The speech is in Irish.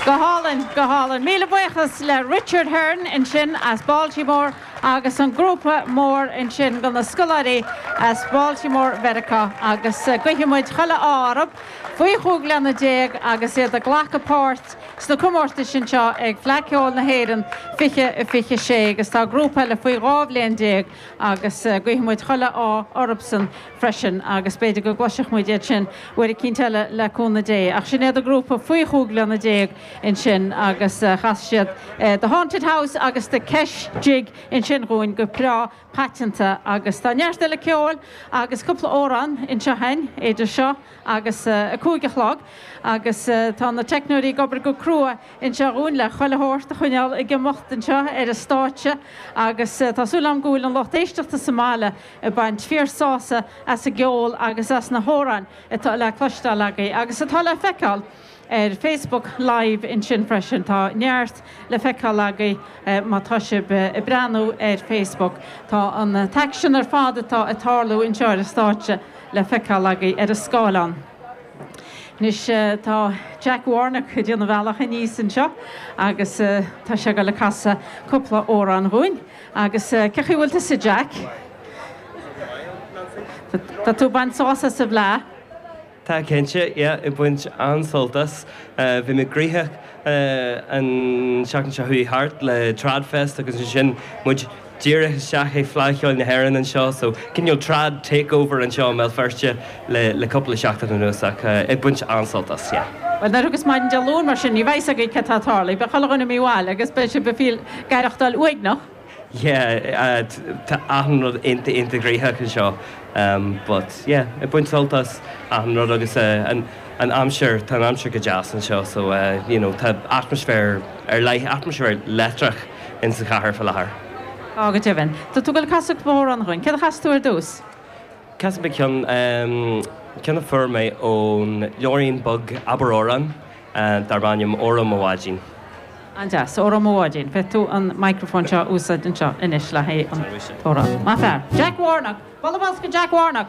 Go hálainn, go hálainn. Míle buíochas le Richard Hearne ansin as Baltimore agus an grúpa mór ansin de na scoláirí as Baltimore Mheiriceá agus guífidh muid chuile ádh orthu faoi chúig bliana déag agus iad ag glacadh páirt sna comórtais anseo ag Fleadh Ceoil na hÉireann 2026 agus tá grúpa eile faoi dhá bhliain déag agus guífidh muid chuile ádh orthusan. freisin agus b'fhéidir go gcloisfidh muid iad sin uair eicínt eile le cúnamh Dé. Ach sin iad an grúpa faoi chúig bliana déag ansin agus chas siad The Haunted House agus The Kesh Jig ansin dhúinn go breá paiteanta agus tá neart eile ceoil agus cúpla amhrán anseo againn idir seo agus a cúig a chlog agus tá na teicneoirí ag obair go crua anseo dhúinn le chuile shórt a choinneáil ag imeacht anseo ar an stáitse agus tá súil agam go bhfuil an lucht éisteachta sa mbaile ag baint fíor sásamh as an gceol agus as na hamhráin atá le cloisteáil agaibh agus atá le feiceáil ar Facebook Live ansin freisin. Tá neart le feiceáil agaibh má tá sibh ag breathnú ar Facebook. Tá an t-aicsean ar fad atá ag tarlú anseo ar an stáitse le feiceáil agaibh ar an scáileán. Anois tá Jack Warnock ag déanamh a bhealach aníos anseo agus tá sé ag dul ag casadh cúpla amhrán dhúinn. Agus cé chaoi bhfuil tusa Jack? Tá tú ag baint sásamh as an bhFleadh? Tá cinnte, yeah, ag baint an-sult as. Bhí mé gnoitheach an tseachtain seo chuaigh thart le Trad Fest agus ansin muid díreach isteach ag Fleadh Cheoil na hÉireann anseo, so cineál trad takeover anseo i mBéal Feirste. le cúpla seachtain anuas ach ag baint an-sult as, yeah. Bhuel, muise agus maidin Dé Luain mar sin, ní bheidh a fhios agaibh céard atá ag tarlú, beidh chuile dhuine imithe abhaile agus beidh sibh ag aireachtáil uaigneach. Yeah, tá achan rud iontach iontach gnoitheach anseo but yeah, ag baint sult as achan rud agus an aimsir, tá an aimsir go deas anseo so you know, tá atmaisféar ar leith, atmaisféar leictreach ins an chathair fá láthair. Tá go deimhin. Tá tú ag casadh cúpla amhrán dhúinn. Céard a chasas tú ar dtús? Casfaidh mé ceann, ceann a fuair mé ón leabhairín beag Abair Amhrán darb ainm Óró Mo Bháidín. An-deas, Óró Mo Bháidín. Féadfaidh tú an microphone seo a úsáid anseo anois le haghaidh an t-amhrán. Maith fear. Jack Warnock! Bualadh bos do Jack Warnock!